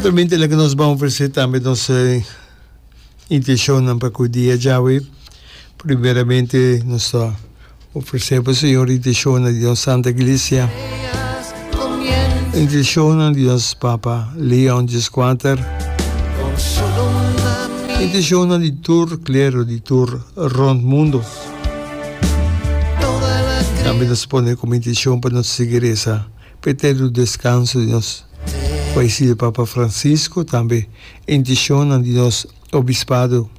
Naturalmente la que nos vamos ofrecer también nos eh, intencionnan pa cu dia Yahweh. Primeramente nos ta ofrecer pa Señor intencionnan di nos Santa Iglesia. Intencionnan di nos Papa Leon Gisquanter. Intencionnan di tur clero, di tur rond mundo. También nos pone como intención pa nos seguir esa P'e eterno descanso di nos fallecide Papa Francisco, tambe e intencionnan di nos Obispado,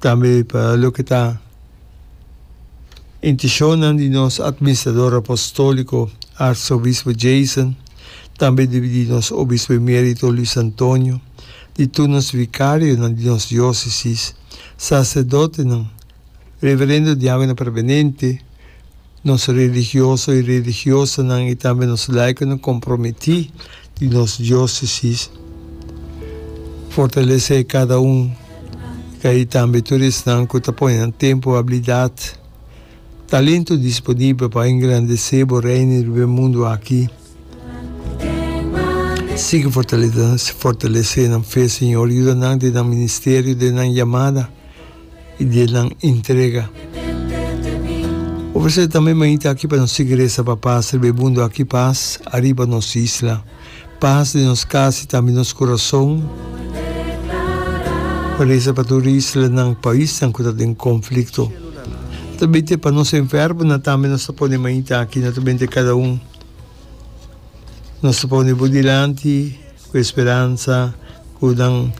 tambe pa loke ta intencionnan di nos Administrador Apostolico Arzobispo Jason, tambe di nos Obispo Emerito Luis Antonio, di tur nos Vicarionan di nos Diocesis, Sacerdotenan Reverendo Diagono Permanente, Nos religioso i religiosanan i tambe nos laikonan komprometí di nos diósesis fortalesé kada un di ei tambe tur esnan ku ta pone nan tempu, abilidat, talentu disponibel pa engrandesé bo Reino riba e mundu aki. Sigui fortalesé nan fe, Señor. Yuda nan den nan ministerio, den nan yamada. y di e nan entrega. Ofrecer tambe mainta aki pa nos sigui reza Papa sirbe mundo aki paz ariba nos isla paz den nos cas y tambe nos corazon reza pa tur isla nan pais nan cu ta den conflicto no ta binte pa nos enfermo nan tambe nos ta pone mainta aki no ta binte cada un nos ta pone bo dilanti. Cu e speransa cu nan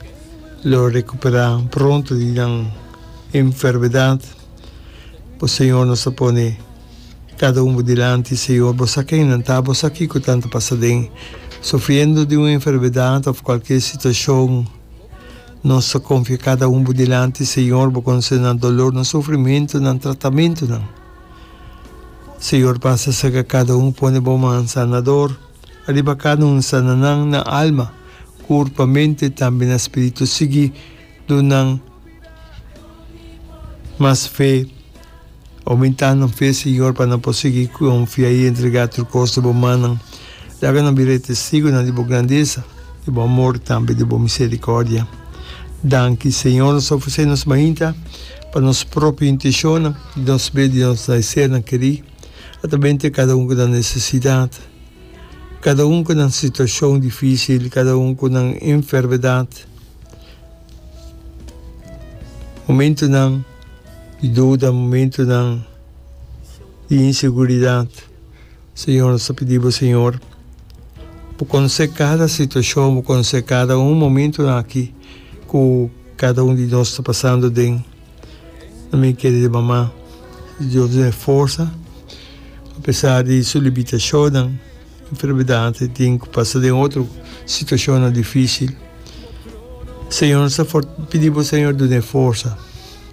lo recupera pronto di nan enfermedad, bo Señor nos ta pone cada un bo dilanti Señor, bo sa ken nan ta, bo sa kico tan ta pasa den, sufriendo di un enfermedad of cualkier situacion, nos ta confia cada un bo dilanti Señor, bo conoce nan dolor, nan sufrimento, nan tratamentonan, Señor pasa cerca cada un pone bo man sanador. Ariba kada un sana nan na alma, kurpa, mente tambe na spiritu sigui duna nan mas fe, oumenta nan fe Señor pa nan por sigui konfia i entrega tur kos na bo mannan. Laga nan bira e testigunan di bo grandesa, di bo amor tambe di bo miserikordia. Danki Señor nos ofresé nos mainta pa nos propio inteshonnan di nos be di nos laeser nan kerí. Ata bini te kada un ku nan nesesidat, kada un ku nan situashon difísil, kada un ku nan enfermedat, momentunan di duda, momentunan di inseguridat. Señor, nos ta pidi bo, Señor, bo konosé kada situashon, bo konosé kada un momentunan aki ku kada un di nos ta pasando den. Mi kere di mama, Dios dun'e forsa, apesar di su libitashonnan, enfermedadnan i tin ku pasa den otro situashonnan difísil. Señor, no sa fort, pidi bo Señor dun'e forsa,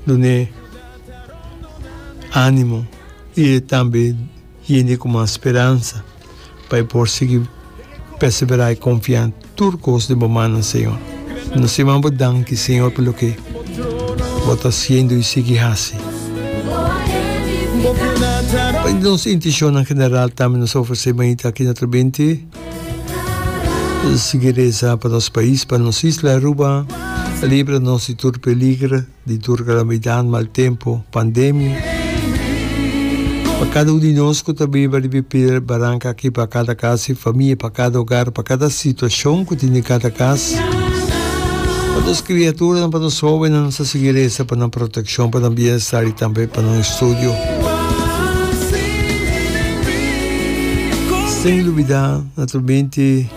dun'e ánimo i tambe Hende ku mas speransa pa e por sigui perseberá i konfiá tur kos den bo mannan, Señor. Nos te manda bo danki, Señor, pa loke bo ta hasiendo i sigui hasi. Pa nos intishonnan general tambe nos ta ofresé manita aki na Trobente. Sigui reza pa nos pais, pa nos isla Aruba. Libra nos di tur peliger. Di tur kalamidad, mal tempu, pandemia. Pa kada un di nos ku ta biba riba e piedra baranka aki, pa kada kas i famia, pa kada ogar, pa kada situashon ku tin den kada kas, pa nos kriaturanan, pa nos hobennan, nos ta sigui resa pa nan protekshon, pa nan bienestar i tambe pa nan estudio. Sin lubidá, naturalmente.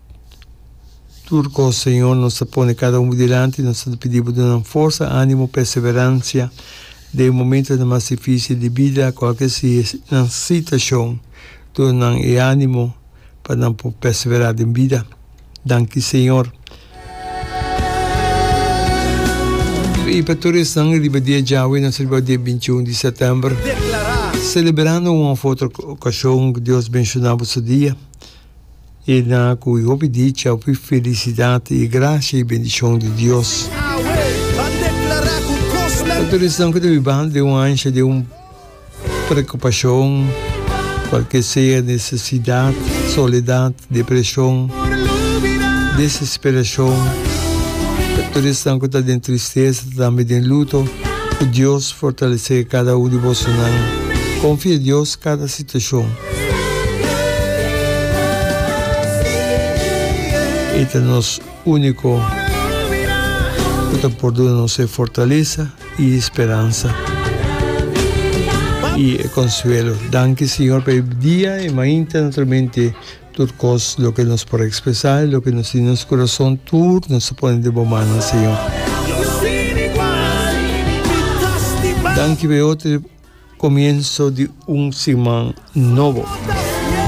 Tur cos, Señor, nos ta pone cada un bo dilanti, nos ta pidi bo dunan forsa, animo, perseverancia den e momentonan mas dificil di bida, cualkier si e nan sitacion, duna nan e animo pa nan por persevera den bida. Danki, Señor. Y pa tur esnan riba dia djawe, nos riba dia bintiun di september, celebrando un of otro ocasion, Dios benciona bo su dia. E na cu e hopi dicha, hopi felicidad y e gracia y bendicion di Dios. Nan tur esnan cu ta bibando den un ansha di un preocupacion, cual que sea necesidad, soledad, depresion, desesperacion, pa tur esnan cu ta den tristeza, tambe den luto, cu Dios fortalece cada un di bosonan. Confia Dios cada. Stashon. E ta nos úniko ku ta por duna nos e fortalesa i speransa i e konsuelo. Danki Señor pa e dia e mainta naturalmente tur kos loke nos por ekspresá i loke nos tin den nos kurason tur nos ta pone den bo mannan Señor. Danki pa e otro. Comienso di un siman nobo.